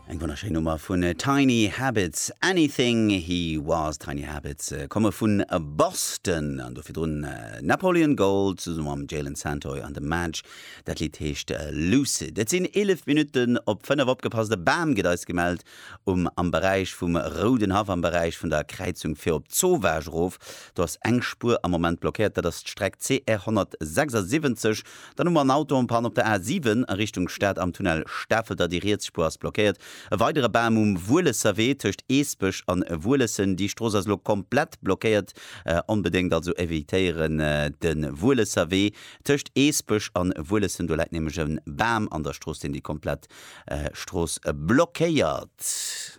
Eng wonnerschéin Nummer vun Tiny Habits, Anything He Was. Tiny Habits komme vu Boston an do virdrun Napoleon Gold zesumme mam Jaylen Santoy an dem Madge. Dat Lidd heescht Lucid. Et sinn 11 Minutten op 5. Opgepasst, e Bam gëtt eis gemellt um am Beräich vum Rouden Haff, am Beräich vun der Kräizung fir op d'Sauvage erof. Do ass eng Spuer am Moment blockéiert, dat ass d'Streck CR 176. Dann hu mer en Auto en Panne op der A 7 a Richtung Stad am Tunnel Stafelder, déi riets Spuer ass blockéiert. E weidere Bam um Wuelesser Wee tëscht Eesbech an Wuelessen, déi Strooss ass elo komplett blockéiert. Onbedéngt also evitéieren de Wuelesser Wee tëscht Eesbech an Wuelessen, do läit nämlech e Bam an der Strooss, deen déi komplett Strooss blockéiert.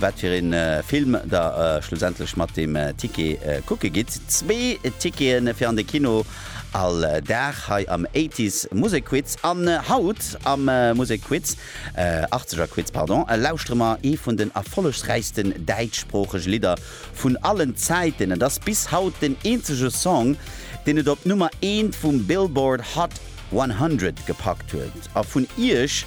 Wat fir een Film der schlussendlech mat deem Ticket kucke gitt, zwee Ticketen fir an de Kino all Dag hei am Eighties Musekquiz. An haut am Musekquiz, Achtzegerquiz pardon, lauschtere mer ee vun den erfollegsräichsten däitschsproochege Lidder vun allen Zäiten. Et ass bis haut den eenzege Song, deen et op d'Nummer eent vum Billboard Hot 100 gepackt huet. A vun iech